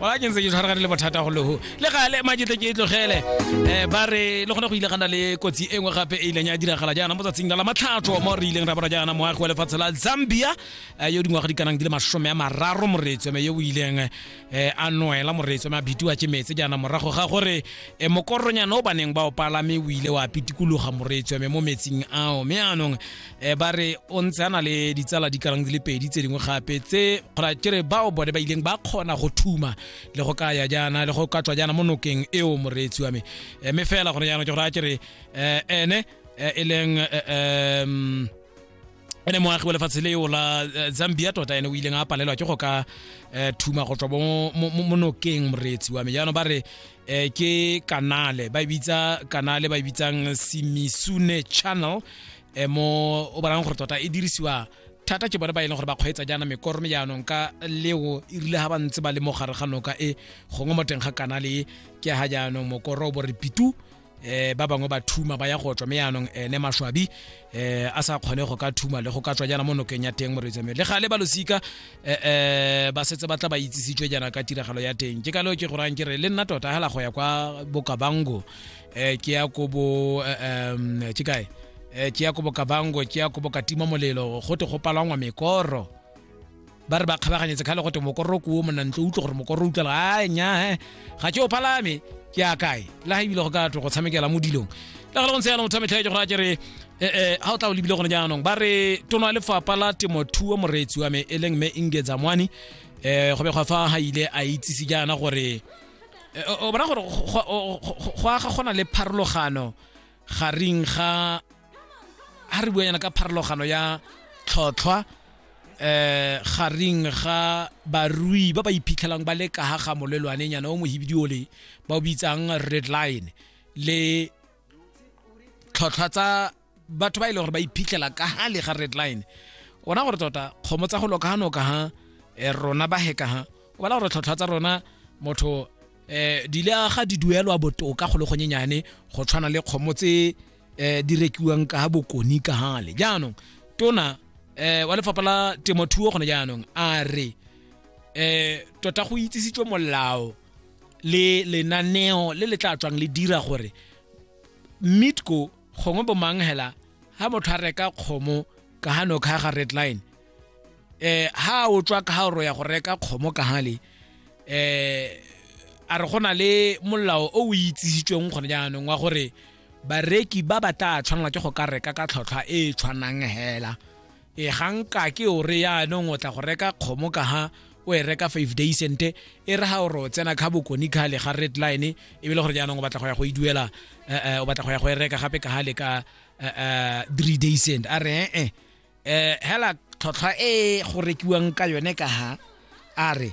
wa ke ntse ke tshwaragane le bothata go leho le gale majetle ke e tlogele um ba re le gone go ile gana le kotsi e nngwe gape e ileng ya diragala jaana mo tsatsing la la matlhatso mo re ileng ra bona jaana moagi wa lefatshe la zambia um yo dingwaga di kanang di le masome a mararo moretswe me yo o ileng um a noela moretswe me a bitiwa ke metse jaana morago ga gore um mokoronyana o baneng ba o palame o ile wa pitikologa moretswe me mo metsing ao me anong um ba re o ntse a na le ditsala di kalang di le pedi tse dingwe gape tse kgona kere bao bone ba ileng ba kgona go thuma le go ka ya jaana le go ka tswa jaana mo nokeng eo moreetsi wa me eh, mme fela gone jaanong ke gore a kere um ene eh, e leng um ene moagi wa lefatshe leo la zambia tota ene o ileng a palelwa ke go ka thuma go tswa mo nokeng moreetsi wa me jaanong ba re eh ke kanale ba e bitsa kanale ba e bitsang simisune channel eh mo o bonang gore tota e dirisiwa thata ke bone ba e leng gore ba kgweetsa jaana mekoro me jaanong ka leo e rile ga ba ntse ba le mo gare ga noka e gongwe mo teng ga kanale e ke ga jaanong mokoro o bo re pitu eh ba bangwe ba thuma ba ya go tswa me yanong ene mashwabi eh a sa kgone go ka thuma le go ka tswa jana mo nokeng ya teng moreetsi le ga le ba losika eh, eh ba setse ba tla ba itsisitswe jana ka tiragalo ya teng ke ka leo ke go rang ke re le nna tota hela go ya kwa bokabango eh ke ya ko bo eh, um ke kae eh ke ya ko bokabango ke ya ko bokatima molelo go te go palangwa mekoro ba re ba kgabaganyetse kgale go te mokororo kuo monantlo utlwe gore mokororo utlwela a nya eh, ga ke o palame ke a kae le ga ebile go ka tlo go tshamekela mo dilong le gale go ntse yana motho a metlhaetse gore a kere eh, eh, ga o tla o lebile gone jaanong ba re tono ya lefapha la temothuo moreetsi wa me e leng mme ingeza mwane um go begwa fa ga ile a itsise jaana gore o bona gore go aga gona le pharologano garing ga ha re buanyana ka pharologano ya tlhotlhwa eh garing ga barui ba ba iphitlhelang ba le ka ha ga molelwane nyana o mohibidi ole ba o bitsang red line le tlhotlhwa tsa batho ba ile e gore ba iphitlhela ka ha le ga red line ona gore tota kgomo tsa go loka ha noka ha eh, rona ba heka ha o bala gore tlhotlhwa tsa rona motho eh di le aga di duelwa botoka go le gonyenyane go tshwana le kgomo tse eh di rekiwang ka bokoni ka hale jaanong tona eh wa lefapha la temothuo gone jaanong a re eh tota go itsisitswe molao le lenaneo le le tla tswang le dira gore mitco gongwe bomang hela ha motho a reka kgomo ka hano ka ga red line eh ha o tswa ka ha o ya go reka kgomo ka hale eh a re gona le molao o o itsisitsweng gone jaanong wa gore bareki ba ba tla tshwanela ke go ka reka ka tlhotlhwa e e tshwanang hela e ganka ke o re yaanong o tla go reka kgomo ka ha o e reka five day cente e re ga o ro tsena ka bokone ka le ga red line e be le gore jaanong o batla go ya go e duela eh, eh, o batla go ya go e reka gape ka ga le ka eh, three day cent a re e eh hela tlhotlhwa e go rekiwang ka yone ka ha a re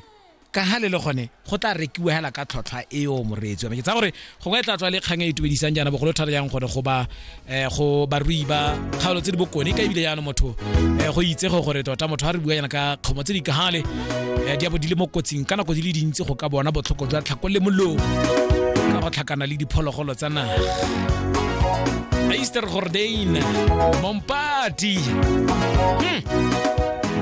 ka ha le le gone go tla rekiwa hela ka tlhotlhwa eo moreetsi yone ke tsa gore gongwe e tla tswa le kgang e e itumedisang jaana bogolo thata yang gore go ba eh, go barui ba kgaolo tse di bokone ka ebile jaanong motho eh, go itsege gore tota motho a re bua yana ka kgomo tse di kahale eh, di abo di le mo kotsing ka nako di le dintsi go ka bona botlhoko jwa tlhako le molomo ka go tlhakana le diphologolo tsa naga Easter Gordain Mompati hmm.